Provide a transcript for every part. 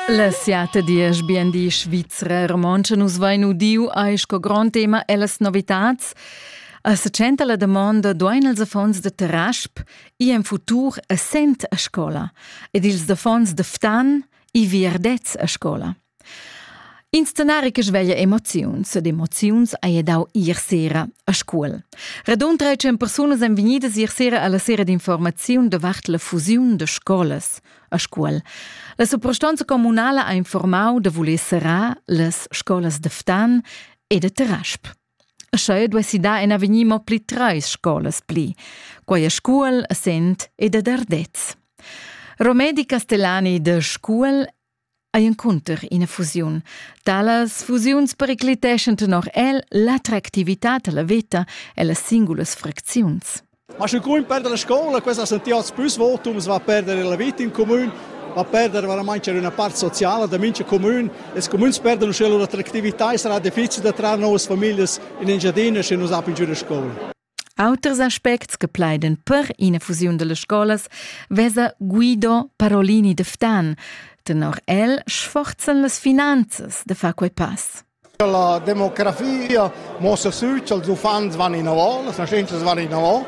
La siata diesch bien di svizra romontscha nus vain udiu ei sco grond tema ellas novitats. A secenta la domanda duain els affons de Terasp i en futur a sent a scola ed ils affons de Ftan i vierdets a scola. In scenari che sveglia emoziuns ed emoziuns haja dau ier sera a Scuol. Radund 13 persunas èn vegnidas ier sera alla sera d'informaziun davart la fusiun de scolas a Scuol. La suprastanza comunala ha informau da voler serrar las scolas de Ftan e de Terasp. Scheu duessi dar en avegnir mo pli treis scolas pli, quai a Scuol, a Sent ed ad Ardez. Romedi Castellani de Scuol ei encunter ina fusiun. Talas fusiuns pericliteschan tenor el l'attractivitad alla veta e las singulas fracziuns. Ma sche grun perde la scola, questa sentia als plus votums va perdere la vita in comune, va perdere veramente una parte sociale da mincha comune. Es comuns perdono sche loro attractività e sarà difficile da traer nuove famiglie in Engiadina se non sapen giù la scuola. Auters aspects che plaidan per ina fusiun dallas scolas vesa Guido Parolini de Ftan. Tenor el sforzan las finanzas de far quei pass. La demografia mossa sü ch'ils uffants van inavò, las nascentas van inavò.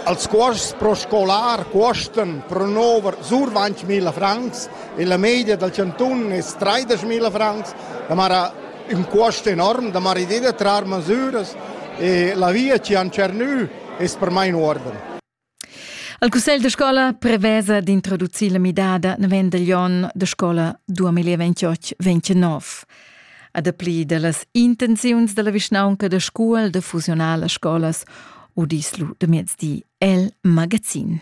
Als cuosts pro scolar cuostan pro nover sur 20.000 francs e la media dal cantun è 30.000 francs. Da mara ün cuost enorm da maridir da trar masüras e la via chi han tschernü es per mai in uorden. Il cussegl da scola prevesa d'introducir la midada navendel onn da scola 2028-29. A dapli da las intenziuns della vischnaunca da Scuol da fusionar las scolas udislu de miezdi el magazin.